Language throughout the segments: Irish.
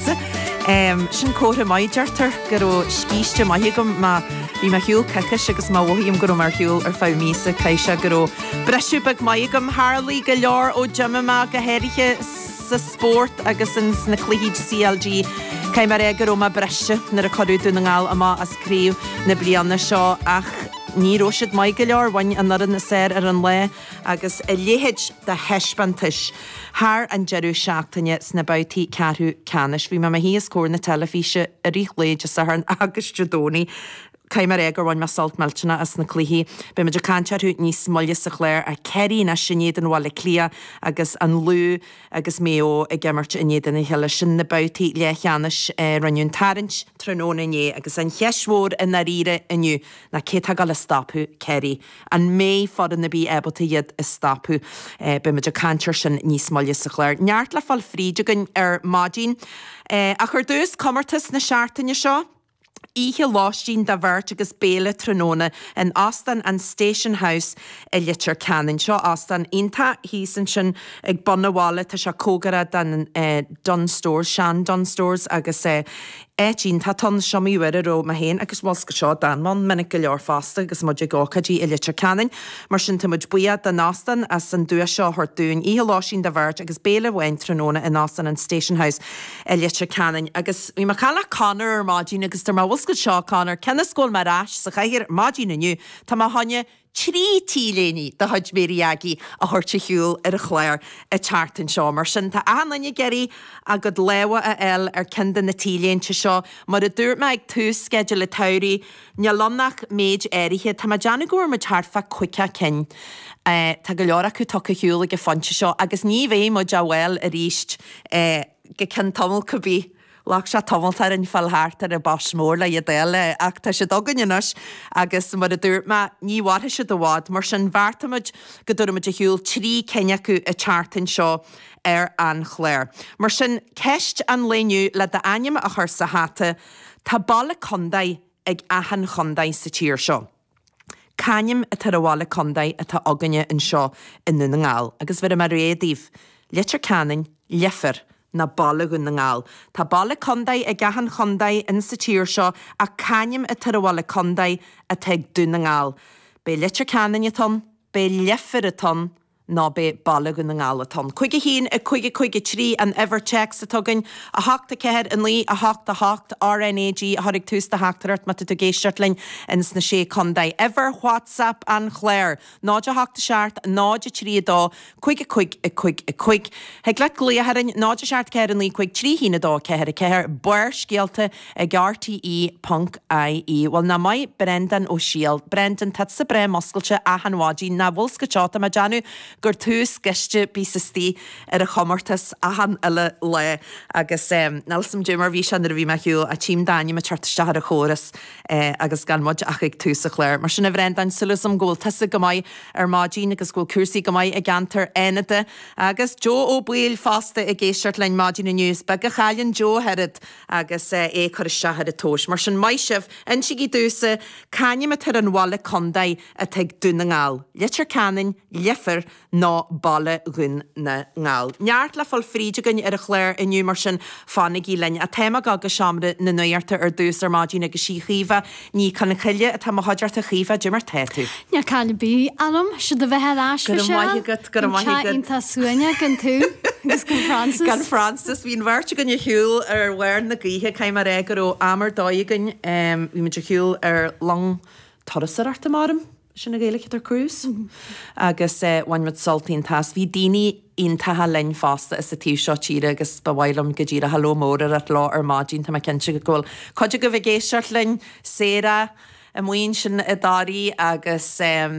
Sin comhartha maith, deirtear, go raibh scíste maith agam. Má bhí mé ar shiúl coicís agus má mhothaím go raibh mé ar shiúl ar feadh míosa, caithfidh sé go raibh briseadh beag maith agam. Tharlaigh go leor ó d'imigh mé, go háirithe sa spórt agus ins na cluichí CLG. Caithfidh mé a rá go raibh mé croíbhriste nuair a cuireadh Dún na nGall amach as Craobh na bliana seo ach ní raibh siad maith go leor, bhain an fhoireann ab fhearr ar an lá. agus a leithéid de thaispeántais thar an deireadh seachtaine sna babhtaí ceathrú ceannais. Bhí mé i mo shuí os comhair na teilifíse i rith lae Dé Sathairn agus Dé Domhnaigh. Caithfidh mé a rá gur bhain mé sult millteanach as na cluichí. Beidh muid ag caint orthu níos moille sa chlár ach Ciarraí anois in éadan Bhaile Átha Cliath agus an Lú agus Maigh Eo ag imirt in éadan a chéile. Sin na babhtaí leathcheannais, rinneadh an tarraingt tráthnóna inné agus an cheist mhór i ndáiríre inniu ná cé atá ag gabháil a stopadh Ciarraí? An mbeidh foireann ar bith ábalta iad a stopadh? Beidh muid ag caint air sin níos moille sa chlár. Neart le fáil fríd againn ar maidin. Ach ar dtús, comórtas na seachtaine seo. Oíche lóistín do bheirt agus béile tráthnóna in Óstán an Station House i Leitir Ceanainn. Seo óstán iontach thíos ansin ag bun an bhaile. Tá sé cóngarach don Dunnes Stores, sean Dunnes Stores, agus Áit iontach atá ann, seomraí ar dóigh. Bhí mé féin agus mo scáth seo Donna ann minic go leor fosta agus muid ag ócáidí i Leitir Ceanainn, mar sin tá muid buíoch den óstán as an duais seo a thabhairt dúinn. Oíche lóistín do bheirt agus béile amháin tráthnóna in Óstán an Station House i Leitir Ceanainn. Agus bhí mé ag caint le Conor ar maidin agus dúirt mé, bhfuil a fhios agat seo, Conor, cionn is go bhfuil mé ar ais sa chathaoir ar maidin inniu, tá mé ag gabháil a trí t-léine de chuid Máirí Aggie a thabhairt ar shiúl ar an chlár an tseachtain seo. Mar sin, tá achan duine ag iarraidh a gcuid lámha a fháil ar ceann de na t-léinte seo. Mar a dúirt mé ag tús Sceideal an tSamhraidh, níl ann ach méid áirithe. Tá mé ag déanamh go bhfuair muid thart fá chaoga cinn. Tá go leor acu tugtha ar shiúl ag an phointe seo agus ní bheidh muid á bhfáil arís go ceann tamall, cibé. Ghlac sé tamall orainn fáil thart ar an boss mór le hiad a fháil, ach tá siad againn anois agus, mar a dúirt mé, ní bhfaigh tú iad i bhfad. Mar sin, bheartaigh muid go dtabharfadh muid ar shiúl trí cinn acu an tseachtain seo ar an chlár. Mar sin, ceist an lae inniu, le d'ainm a chur sa hata, Tá baile contae ag achan chontae sa tír seo. C'ainm atá ar an bhaile contae atá againne anseo i nDún na nGall agus bhéarfaidh mé rogha daoibh, Leitir Ceanainn, Leifear, nó Baile Dhún na nGall. Tá baile contae ag achan chontae ins sa tír seo ach c'ainm atá ar an bhaile contae atá ag Dún na nGall. Ab é Leitir Ceanainn atá ann, ab é Leifear atá ann, ná ab é Baile Dhún na nGall atá ann. Cúig a haon, a cúig, a cúig a trí an uimhir téacs atá againn. A hocht, a ceathair, a naoi, a hocht, a hocht, RNAG a chur ag tús do theachtaireacht má tá tú ag éisteacht linn ins na Sé Condae. Uimhir WhatsApp an chláir, 0 a hocht a seacht, 0 a trí a dó, cúig a cúig, a cúig a cúig. Thig leat glaoch orainn, 0 a seacht, a ceathair, a naoi, cúig, trí, haon, a dó, a ceathair, a ceathair. Barrscéalta. ag RTÉ ponc IE, Bhuel nach maith Breandán Ó Siail, Brendan tá tusa breá muscailte achan mhaidin, an bhfuil 's agat, tá mé ag déanamh gur tú is gaiste a bíos istigh ar an chomórtas achan uile lá agus em níl 's agam cad é mar bhí sé nuair a bhí mé ar shiúl ach tím d'ainm a' teacht isteach ar an chóras eh agus gan muid ach ag tús a' chláir mar sin a Bhreandáin súil agam go bhfuil tusa go maith ar maidin agus go bhfuil cúrsaí go maith i gceantar Fhánada agus Joe Ó Baoill fosta ag éisteacht linn maidin inniu, is beag a chailleann Joe ach oiread agus é ag cur isteach ar an tomhais. Mar sin, maith sibh! Insigí domhsa c'ainm atá ar an bhaile contae atá ag Dún na nGall, Leitir Ceanainn, Leifear nó Baile Dhún na nGall. Neart le fáil fríd againn ar an chlár inniu, mar sin fanaigí linn. Ach tá muid ag gabháil go seomra na nuachta ar dtús ar maidin agus 'sí Caoimhe, Ní Chonchoille atá i mo chuideachta, a Chaoimhe, cad é mar atá tú? Níl caill ar bith orm, is deas a bheith ar ais Go raibh maith, a Mhichelle, agat, go raibh maith agat. iontach suaimhneach gan tú agus gan Frances. Gan Frances, bhí an bheirt againn ar shiúl ar bharr na gaoithe, caithfidh mé a rá go raibh am ar dóigh againn, bhí muid ar shiúl ar long turasóireachta, measaim sin an Ghaeilic atá ar cruise agus bhain muid sult iontach as. Bhí daoine iontacha linn fosta as an taobh seo tíre agus ba mhaith liom go díreach hello mór a rá leo ar maidin, tá mé cinnte go bhfuil cuid agaibh ag éisteacht linn, Sarah, amuigh ansin i dToraí agus em.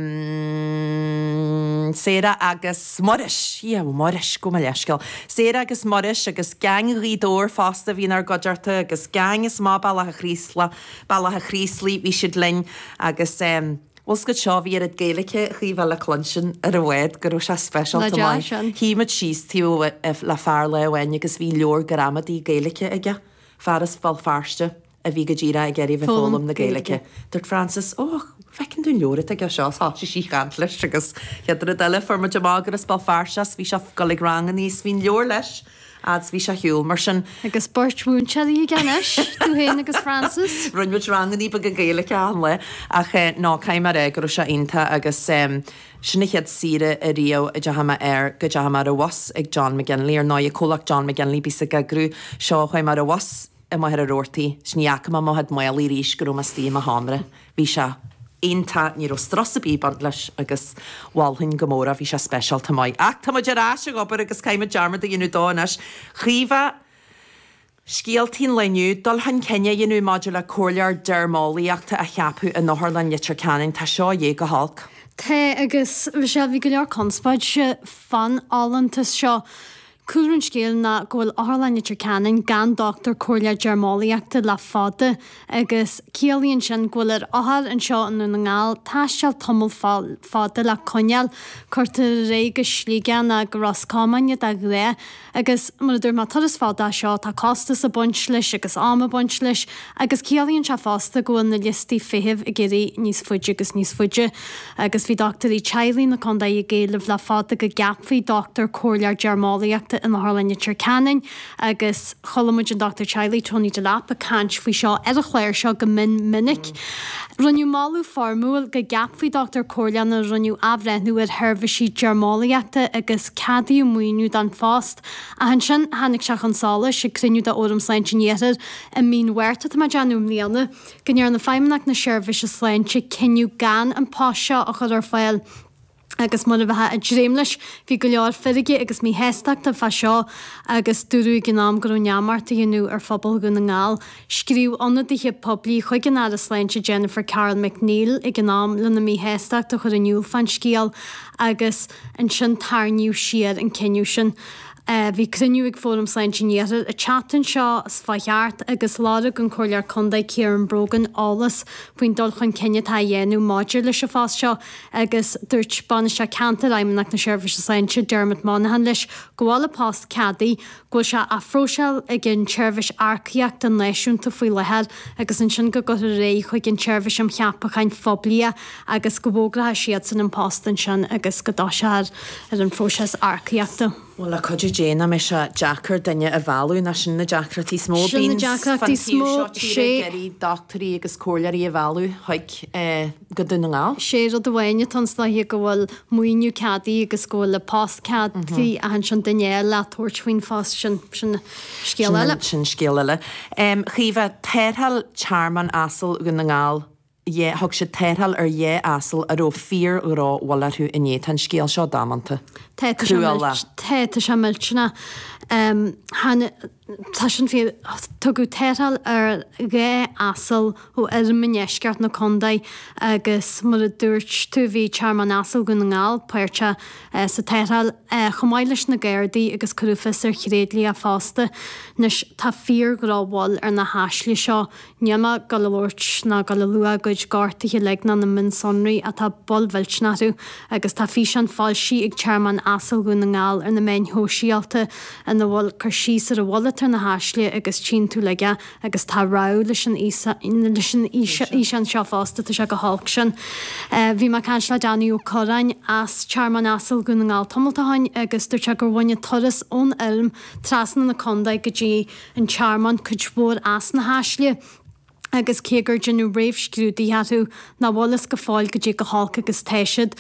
Sarah agus Muiris, yeah Muiris, gabh mo leithscéal, Sarah agus Muiris agus gang Ghaoth Dobhair fosta a bhí inár gcuideachta agus gang as amach bealach a' Chraoslaigh, Bealach a' Chraoslaigh, bhí siad linn agus ehm, bhfuil 's agat seo, bhí oiread Gaeilice chóir a bheith le cluinstin ar an bhád go raibh sé speisialta Nach deas sin! Shuigh muid síos taobh le fear lá amháin agus bhí leabhar gramadaí Gaeilice aige, fear as Béal Feirste a bhí go díreach ag iarraidh a bheith ag foghlaim na Gaeilice. Dúirt Frances, Ó, an bhfeiceann tú an leabhar atá aige seo, agus thosaigh sí ag caint leis agus chéad rud eile fuair muid amach gur as Béal Feirste é is bhí sé ag dul ag ranganna is bhí an leabhar leis! Á deas, Bhí sé ar shiúl, mar sin. Agus beirt mhúinteoirí aige anois, tú féin agus Frances. Rinn muid rangannaí beaga Gaeilge achan lá, ach eh, no, caithfidh mé a rá go raibh sé iontach agus em, sin an chéad saoire ariamh a deachaidh mé air, go deachaidh mé ar an bhus ag John McGinley, ar ndóighe, comhlacht John McGinley, a bhíos ag eagrú seo, chuaigh mé ar an bhus, i mo thearann rabhartaí, 's ní fhaca mé mo mhadadh maol arís go raibh mé 'stigh i mo sheomra. Bhí sé iontach, ní raibh strus a' bith ag baint leis agus mholfainn go mór é, bhí sé speisialta maith. Ach tá muid ar ais ag obair agus caithfimid dearmad a dhéanamh dó anois. Caoimhe, scéaltaí an lae inniu, dul chun cinn a dhéanamh maidir le comhairleoir deirmeolaíochta a cheapadh in Otharlann Leitir Ceanainn, tá seo ag dul go holc. Tá, agus a Mhichelle, bhí go leor conspóid fán fholúntas seo. Cúlra an scéil ná go bhfuil Otharlann Leitir Ceanainn gan dochtúir comhairleoir deirmeolaíochta le fada agus ciallaíonn sin go bhfuil ar othair anseo i nDún na nGall taisteal tamall fada le coinneáil, cuirtear ar aghaidh go Sligeach nó go Ros Comáin iad de ghnáth agus mar a dúirt mé turas fada é seo tá costas ag baint leis agus am ag baint leis agus ciallaíonn sé fosta go bhfuil na liostaí feithimh ag éirí níos faide agus níos faide. Agus bhí dochtúirí teaghlaigh na contae ag éileamh le fada go gceapfaí dochtúir comhairleoir deirmeolaíochta in Otharlann Leitir Ceanainn agus chuala muid an dochtúir teaghlaigh Tony Delap ag caint faoi seo ar an chláir seo go mion minic. Rinneadh moladh foirmiúil go gceapfaí dochtúir comhairleoir nuair a rinneadh athbhreithniú ar sheirbhísí deirmeolaíochta agus ceadaíodh maoiniú don phost. Ach ansin tháinig sé chun solais ag cruinniú de Fhóram Sláinte an Iarthair i mí an Mhárta atá mé ag déanamh i mbliana, go ndearna Feidhmeannacht na Seirbhíse Sláinte cinneadh gan an post seo a chur ar fáil agus mar a bheifeá ag dréim leis, bhí go leor feirge agus míshástachta fá seo agus dúradh ag an am go raibh neamart á dhéanamh ar phobal Dhún na nGall. Scríobh ionadaithe poiblí chuig an Aire Sláinte Jennifer Carroll MacNeill ag an am lena míshástacht a chur in iúl fán scéal agus ansin tarraingíodh siar an cinneadh sin. Bhí cruinniú ag Fóram Sláinte an Iarthair an tseachtain seo s'chuaigh thart agus lorg an Comhairleoir Contae Ciaran Brogan eolas faoin dul chun cinn atá á dhéanamh maidir leis an phost seo agus dúirt Bainisteoir Ceantair Fheidhmeannacht na Seirbhíse Sláinte, Dermot Monaghan leis go bhfuil an post ceadaithe, go bhfuil sé á phróiseáil ag an tSeirbhís Earcaíochta Náisiúnta faoi láthair agus ansin go gcuirfear ar aghaidh chuig an tSeirbhís um Cheapacháin Phoiblí é. agus go bhfógrafadh siadsan an post ansin agus go dtoiseodh ar an phróiseas earcaíochta. Bhuel, le cuidiú Dé nach mbeidh sé deacair duine a mhealladh, nach sin na deacrachtaí is mó a Sin na bíonns deacrachtaí fán is taobh mó, seo tíre, ag sé. iarraidh dochtúirí agus comhairleoirí a mhealladh chuig, eh, go Dún na nGall. Is é rud amháin atá ann anois go bhfuil maoiniú ceadaithe agus go bhfuil an post ceadaithe ach ansin duine a fháil le tabhairt faoin phost sin, sin scéal Sin eile. an, sin scéal eile. Em, Caoimhe, tarrtháil Tearmann Asal Dhún na nGall, yeah thug siad tarrtháil ar dhá asal a raibh fíor-dhrochbhail orthu inné, tá an scéal seo damanta, cruálach. Tá tá sé millteanach. Tá sin fíor, tugadh tarrtháil ar dhá asal ó fheirm i ndeisceart na condae agus mar a dúirt tú bhí Tearmann Asal Dhún na nGall páirteach sa tarrtháil chomh maith leis na Gardaí agus cuireadh fios ar thréidlia fosta. Anois tá fíor-dhrochbhail ar na haisle seo, níl mé ag gabháil a labhairt ná ag gabháil a lua a gcuid gortuithe uilig ná na mionsonraí ach tá bail mhillteanach orthu agus tá físeán foilsithe ag Tearmann Asail Dhún na nGall ar na meáin shóisialta ina bhfuil cur síos ar an bhail atá ar na haisle agus tchíonn tú uilig é agus tá rabhadh leis an fhíseán seo fosta, tá sé chomh holc sin. Bhí mé ag caint le Danny Ó Corráin as Tearmann Asail Dhún na nGall tamalt ó shin agus dúirt sé gur bhain an turas ón fheirm trasna na condae go dtí an Tearmann cuid mhór as na haisle agus cé gur deineadh réamhscrúdaithe orthu nach bhfuil a fhios go fóill goidé chomh holc agus atá siad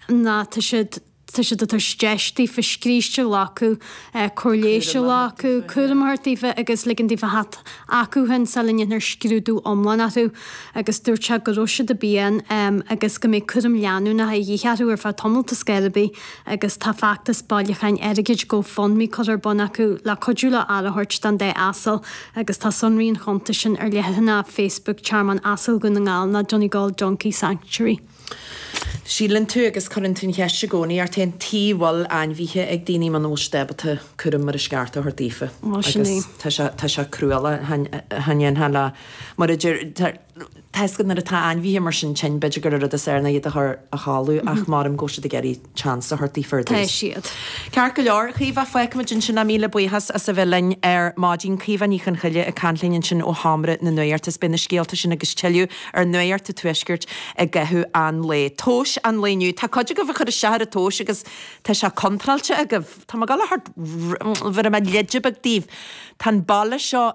ná tá siad tá siad ag tabhairt deis daofa scríste a ghlacadh, cóir leighis a ghlacadh, cúram a thabhairt daofa agus ligean daofa theacht chucu fhéin sula ndéanfar scrúdú iomlán orthu agus dúirt sé go raibh siad i bpian agus go mbeidh cúram leanúnach a dhíth orthu ar feadh tamall toisc gurb í agus tá feachtas bailiúcháin airgid GoFundMe curtha ar bun acu le cuidiú leo aire a thabhairt don dá asal agus tá sonraí an chuntais sin ar leathanach Facebook Tearmann Asail Dhún na nGall ná Donegal Donkey Sanctuary. Síleann tú agus cuireann tú an cheist i gcónaí, ort féin, tuige bhfuil ainmhithe ag daoine muna bhfuil siad ábalta cúram mar is ceart a thabhairt daofa? Bhuel, sin é. Agus tá sé, tá sé cruálach, a Sheáin, a Sheáin Dhéanfaidh le, mar a deir, Toisc nuair atá ainmhithe mar sin tinn, b'fhéidir gur an rud is fearr ná iad a chur a chodladh, ach maith liom go bhfuil siad ag iarraidh chance a thabhairt daofa ar dtús. Tá siad. Ceart go leor, Caoimhe, fágfaimid ansin é, míle buíochas as a bheith linn ar maidin. Caoimhe Ní Chonchoille ag caint linn ansin ó Sheomra na Nuachta agus beidh na scéalta sin agus tuilleadh ar Nuacht a' Tuaiscirt i gcaitheamh an lae. Tomhais an lae inniu, tá cuid agaibh ag cur isteach ar an tomhas agus tá sé contráilte agaibh. Tá mé ag dul a thabhairt leide beag daoibh, tá an baile seo,